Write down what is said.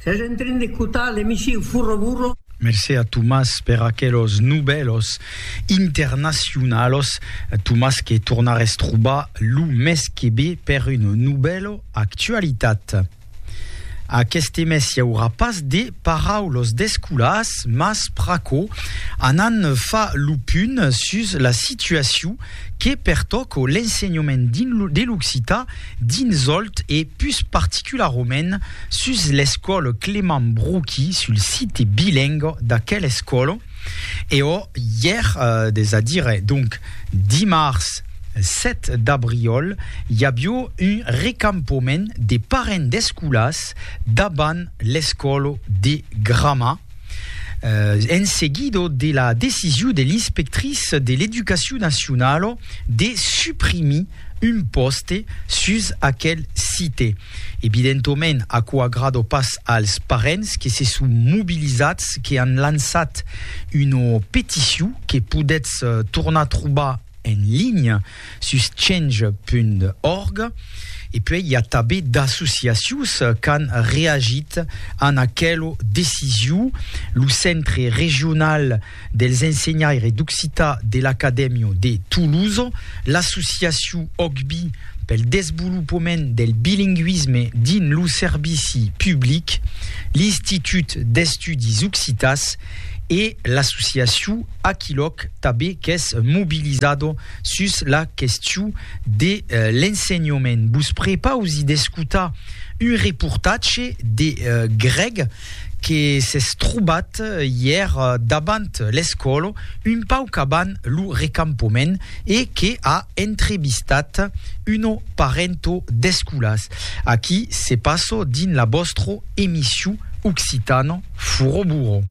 Sètz en trin d'escotar l'emissiu Furro Burro. Mercé a Tomàs per aquelos novèlos internacionalos, Tomàs que tornares trobar lo mes que ve per un novèlo Actualitat. Aqueste mes i aurà pas de paraulos d'escolas, mas pr'aquò anam far lo punt sus la situaciu que pertòco l'ensenhament de l'occitan dins Òlt e pus particularament sus l'escòla Clement Broqui, sul site bilingue d'aquela escòla. E ò, ièr, es a dire, donc, dimars 7 d'abriòl, i avió un recampament de parents d'escolas davant l'escòla de Grama, en seguido de la decision de l'inspectrice de l'Educacion Nacionala de suprimir un pòste sus aquel site. Evidentoment, aquò agrada pas als parents que se son mobilizats, que an lançat una peticion que podètz tornar trobar en linha sus change.org e puèi i a tabé d'associacions qu'an reagit an aquelo decisiu, lo Centre Regional dels Ensenhaires d'Occità de l'Acadèmio de Toulouse, l'associaciu OCBI pel desvolopament del bilinguisme dins lo servici public, l'Institut d'Estudis Occitàs e l'associaciu Aquilòc tanben qu'es mobilizado sus la question de l'ensenhament. Vos prepausi d'escotar un reportatge de Greg que s'es trobat ièr davant l'escòla, un pauc avant lo recampament, e que a entrevistat una parenta d'escolàs. Aquí se passa dins la vòstra emission Occitano Furoburo.